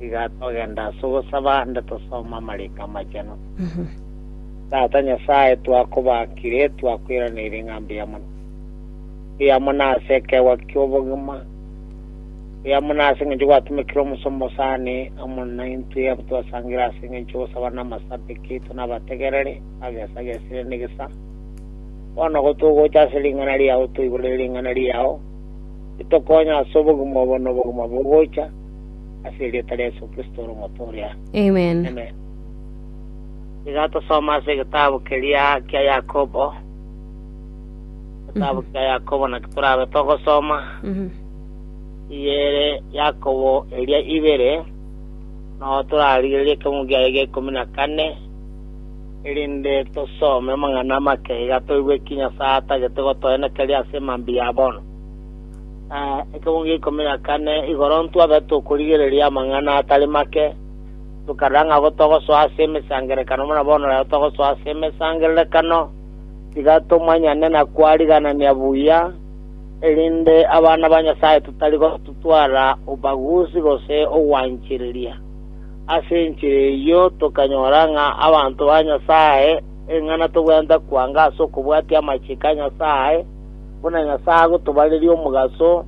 Iga togenda ase ogosaba ande tosome amariko amachenu. Tata Nyasae, twakobakire, twakoiraneire ng'a mbuya mono. Mbuya mono ase ekeegwa ki'obogima. Mbuya mono ase engencho gwatomekire omosomba osani amo naintwe abo twasangire ase engencho y'ogosaba na amasabiki aito na abategereri bagesagesire negesa. Bono ogo togocha ase ring'ana riao toigure ring'ana riao, ritokonye ase obogima obo na obogima bogocha, ase erieta ria Yeso Kristo ore omoto oria. Amen. Tiga tosome ase egetabu keria kia Yakobo. Egetabu kia Yakobo naki torabe togosoma, eria ere Yakobo eria ibere, nao torarigererie ekegungu giaye gia ikomi na kane, erinde tosome amang'ana amake iga toigwe ki Nyasae atagete gotoenekeria ase mambia ya bono. Eh, ekemo gia ikomi na kane igoro ntwabe tokorigereria amang'ana atari make, tokarora ng'a abwo togosoa ase emesangerekano buna bono rero togosoa ase emesangererekano, tiga tomanyane na kwariganania buya, erinde abana ba Nyasae totari gotutwara ubaguzi gose ogwanchereria. Ase enchera eyio tokanyora ng'a abanto ba Nyasae, ering'ana tobwenerete kwanga ase okobwatia amachiko a Nyasae, buna Nyasae agotobareria omogaso,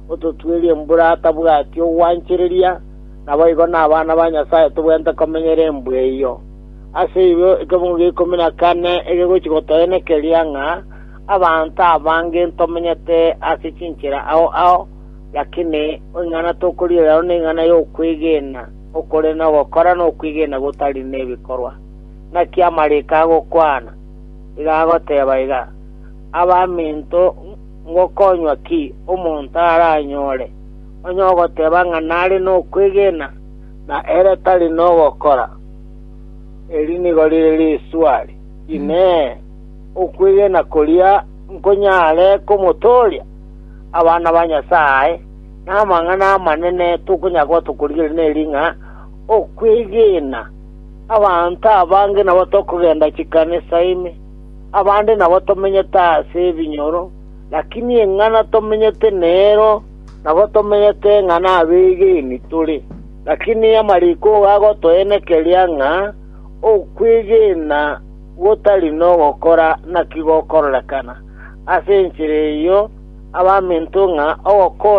ototwerie embura atabwati ogwanchereria, naboigo nabana ba Nyasae tobwenerete komenyera embura eyio. Ase igo ekemogo gia ikomi na kane egegochi gotoenekeria ng'a abanto abange ntomenyete ase chinchera ao ao, lakini ing'ana tokorigereria aro ning'ana yokwegena okore na ogokora nokwegena gotari nebikorwa. Naki amariko agokwana, iga agoteba iga, Abaminto, ngokonywa ki omonto aranyore, onye ogoteba ng'a nare nokwegena, na ere tari nogokora? Eri nigo rire riswali, Inee! Okwegena koria nkonyare komotooria? Abana ba Nyasae, namang'ana amanene tokonyakorwa tokorigereria neri ng'a okwegena abanto abange nabo tokogenda chikanisa ime, Abande nabo tomenyete ase ebinyoro, lakini eng'ana tomenyete nero nabo tomenyete ng'a nabegeni tore. Lakini amariko igo agotoenekeria ng'a okwegena gotari nogokora naki gokororekana. Ase enchera eyio abaminto ng'a ogokonya